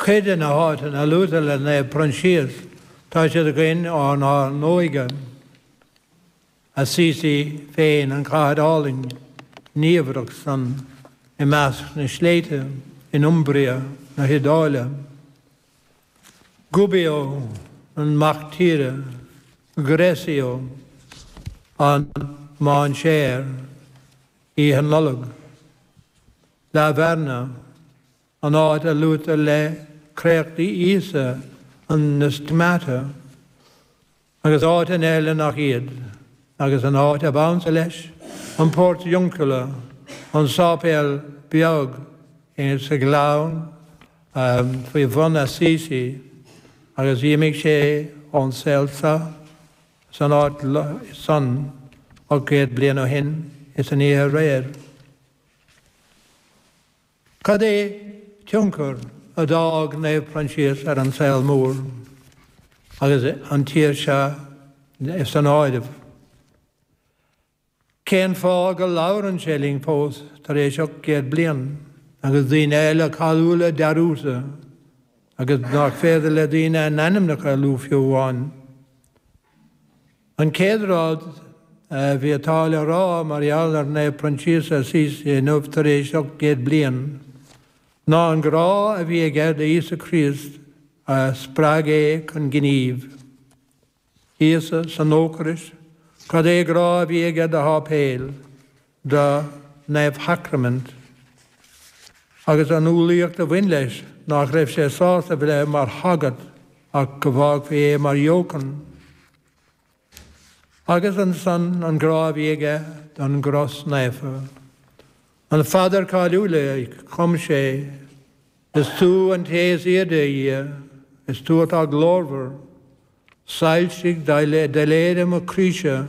Cuid de na háiteanna luaite le Naomh Proinsias, tá siad againn ónár n-óige. Assisi féin, an chathair álainn niamhrach san i measc na sléibhte in Umbria na hIodáile. Gubbio, an mac tíre, Greccio, an mainséar, Oíche Nollag. La Verna, an áit a luaitear le créachtaí Íosa an stigmata, agus áiteanna eile nach iad, agus an áit ab ansa leis, an Portiuncula, an sáipéal beag sa ghleann faoi bhun Assisi, agus d'imigh sé ón saol seo san áit san ocht gcéad bliain ó shin is an oíche aréir. Cad é tionchar a d'fhág Naomh Proinsias ar an saol mór, agus an tír seo san áireamh? Cén fáth go labhrann sé linn fós tar éis 800 bliain, agus daoine eile cáiliúla dearúdta, agus nach féidir le daoine a n-ainmneacha a lua fiú amháin? An chéad rud a bhí atá le rá mar gheall ar Naomh Proinsias Assisi inniu tar éis 800 bliain ná an grá a bhí aige do Íosa Críost a spreag é chun gnímh. Íosa san Eocairist, cad é grá a bhí aige do sháipéil. don Naomhshacraimint agus an umhlaíocht a bhain leis, nach raibh sé sásta a bheith mar shagart ach go bhfágfaí é mar dheochan, agus ansan an grá a bhí aige don gcros naofa. An phaidir cáiliúil a chum sé, 'Is tú an Té is Airde, a Dhia, is tú atá glórmhar, soilsigh doiléire mo chroíse,